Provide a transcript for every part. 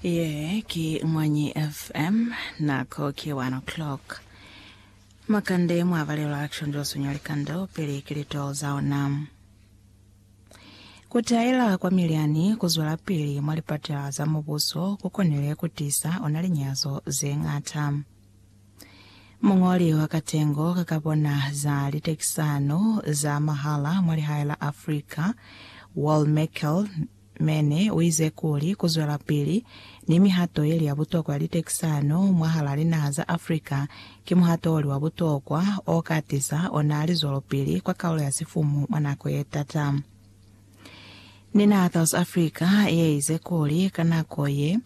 Ye ki Mwanyi FM, nako ki 1 o'clock. Makande mwa balelwa kishonjwa sunya likando pili ki litolo za ona. Ku taela kwa milyani ku zwela pili mwa lipatala za mubuso ku konile ku tisa ona linyazo ze ngata. Mungoli wa katengo ka ka bona za litekisano za mahala mwa lihae la Africa, Wal Merkel, Mene uize kuli kuzwelapili ni mihato yeli ya butokwa ya litekisano mwahalaa linaha za Africa ki muhato oli wa butokwa oka tiza ona lizwelopili kwa kaulo ya sifumu mwa nako yetata. Ni naha South Africa yeize kuli ka nako ye,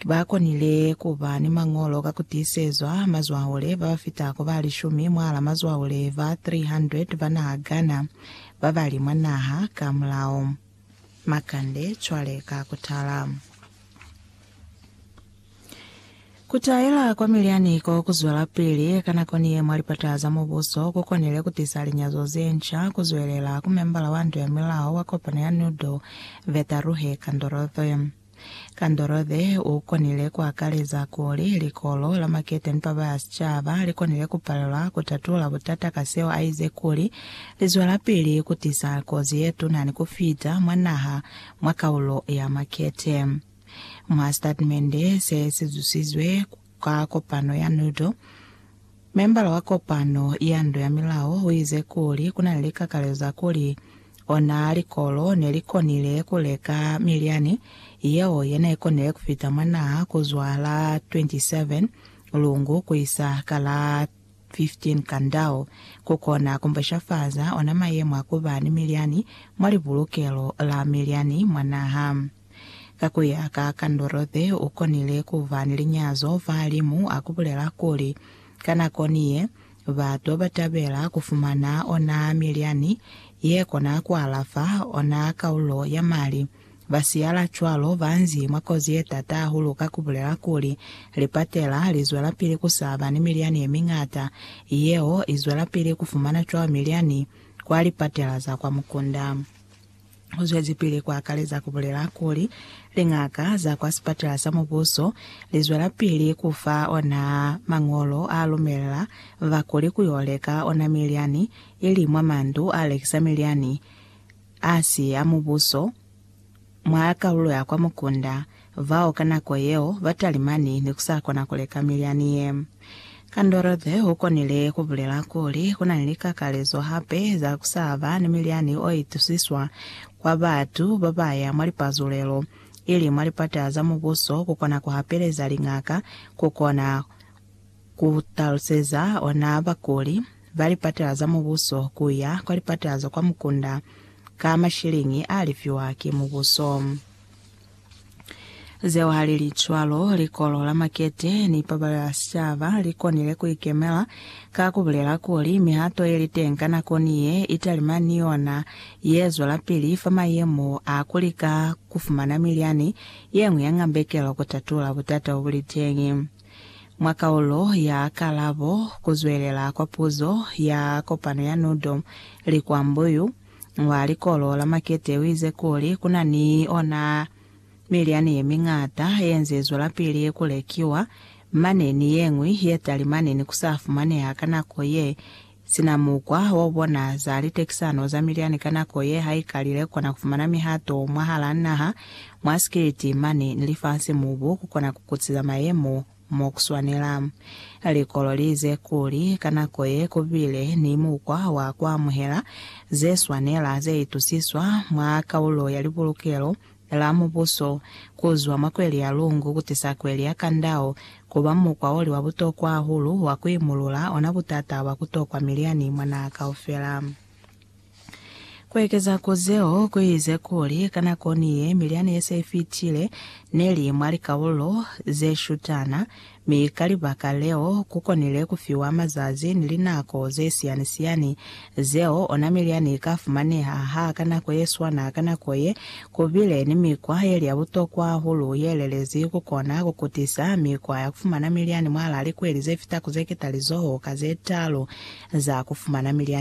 Ba konile ku ba ni mañolo ka ku tiisezwa mazwaule ba ba fitako ba lishumi mwal'a mazwaule ba 300 ba naha Ghana ba ba li mwa naha ka mulao. Makande cwale ka ku tala. Ku taela kwa milyani ko ku zwelapili ka nako ni ye mwa lipata za mubuso ku konile ku tisa linyazo ze nca, ku zwelela ku membala wa Ndu ya Milao wa kopano ya Nudo, Vetaruhe Kandorothe. Kandolothe u konile ku akaleza kuli likolo la maketeni pa ba sicaba li konile ku palelwa ku tatula butata ka seo a ize kuli li zwelapili ku tisa kozi ye tuna ni ku fita mwa naha mwa kaulo ya makete. Mwa sitatimende se si zusizwe ku Ka kopano ya NUDO, membala wa kopano ya ndo ya milao uize kuli kuna ni likakalezo za kuli ona likolo nelikonile kuleka milyani yeo yenaikonile kufita mwa naha kuzwa la 27 Lungu kuisa ka la 15 Kandau, kukona kumbeshafaza ona mayemo a kuba ni milyani mwa libulukelo la milyani mwa naha. Ka ku ya ka ka Ndorothy, u konile ku ba ni linyazo fa limu a ku bulela kuli, Ka nako ni ye, batu ba tabela ku fumana ona milyani ye kona ku alafa ona kaulo ya mali. Ba siyala cwalo ba nzi mwa kozi ye t'ata hahulu ka ku bulela kuli, Lipatela li zwelapili ku sa ba ni milyani ye miñata, yeo i zwelapili ku fumana cwalo milyani kwa lipatela za kwa mukunda. U zwezipili ku akaleza ku bulela kuli, Liñaka za kwa Sipatela sa Mubuso li zwelapili ku fa ona mañolo a lumela bakuli ku yo leka ona milyani, ili mwa mandu a lekisa milyani a si a mubuso mwa kalulo ya kwa mukunda. Bao ka nako yeo ba talimani ni ku sa kona ku leka milyani ye. Kandorothe u konile ku bulela kuli, Ku na ni likakalezo hape za ku sa ba ni milyani o itusiswa kwa batu ba ba ya mwa lipazulelo, ili mwa lipata za Mubuso ku kona ku hapeleza liñaka ku kona ku taluseza ona bakuli ba lipata za Mubuso ku ya kwa lipata za kwa mukunda ka mashiliñi a lifiwa ki Mubuso. Zeo halili cwalo, likolo la makete ni pabalo ya sicaba likonile kuikemela ka kubulela kuli mihato yeliteng ka nako ni ye italima ni yona yezwelapili fa mayemo a kulika kufumana milyani yeñwi ya ngambekelo kutatula butata bobuliteng mwa kaulo ya kalabo. Kuzwelela kwa puzo ya kopano ya NUDO, Likwambuyu. Mwa likolo la makete uize kuli kuna ni ona milyani yemiñata yenze zwelapili kulekiwa mane ni yeñwi yetali mane ni kusa fumaneha ka nako ye, sina mukwa waubona za litekisano za milyani ka nako ye haikalile kona kufumana mihato mwahala naha, mwa sikiliti mane ni lifasi mubu kukona kukutiza mayemo. Mo ku swanela. Li kololize kuli ka nako ye ku bile ni mukwa wa ku amuhela ze swanela ze itusiswa mwa kaulo ya Libulukelo la Mubuso ku zwa mwa kweli ya Lungu ku tisa kweli ya Qandao ku ba mukwa o li wa butokwa hahulu wa ku imulula ona butata bwa ku tokwa miliani mwa naha kaufela. Ku ekeza ku zeo ku ize kuli, ka nako ni ye, milyani ye se i fitile ne li mwa likaulo ze shutana, mi ka libaka leo ku konile ku fiwa mazazi ni linako ze siyani-siyani zeo ona milyani i ka fumaneha. Ha ka nako ye swana, ka nako ye, ku bile ni mikwa ye li ya butokwa hahulu ye lelezi ku kona ku kutisa mikwa ya ku fumana milyani mwahal'a likweli ze fita ku ze ketalizoho ka ze talu za ku fumana milyani.